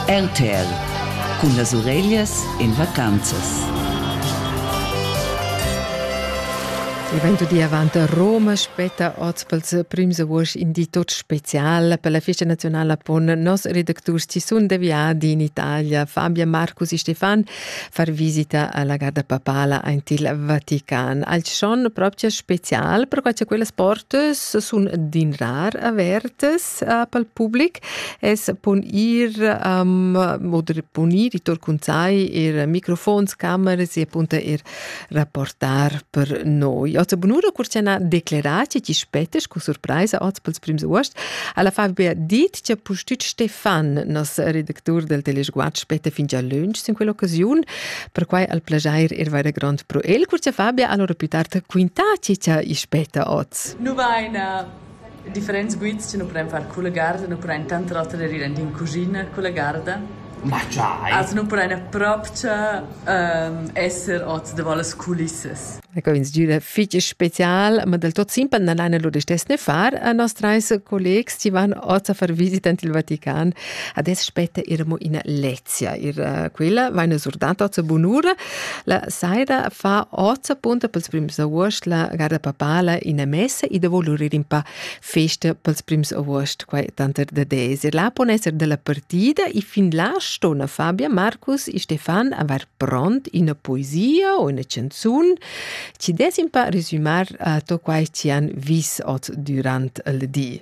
Entel cun las ureglias en vacanzas. Il vento di avant a Roma spetta oz pels prims august in di tot special per la festa nazionala pon nos redacturs Tisun de Viadi in Italia, Fabia Marcus e Stefan far visita alla garda papala ant il Vatican. Al schon proprio special, perché quelle sport sun din rar avertes pel public es pon ir um, oder pon ir i tur cun sai ir microfons, cameras e punto ir rapportar per noi. Oza bunura curciana decleratie chi spetes cu surpraisa oz pels prims uost, alla Fabia dit che pustüt Stefan, nos redactur del Teleschguat, spete fin già lunch in quell'occasiun, per quai al plagiair ir vaire grond pro el. Curcia Fabia, allora più tard quintatie che i speta oz. Nu vaina. Differents guids che nu pudran far culla garda nu pudran tanter oter eir ir aint in cuschina culla garda. Ma giai! Also nu pudran propcha esser hoz davo las culissas. Ecco, ins giüda fich special, ma del tot simpel non laina lur istess far. A nos trais collegs chi van oz a far visita ant il Vatican, adesso spetta ir amo ina lec. Sia ir eh, quella vaina surdata a bunura. La saira fa oza punta pels prims august la garda papala in messa e da volurir in pa festa pels prims august, quai tanter da deser. Là pon esser della partida e fin là stona Fabia, Marcus e Stefan aver pront una poesia o una canzun ci des in pa resumar uh, to quai ci han vis ot durant il di.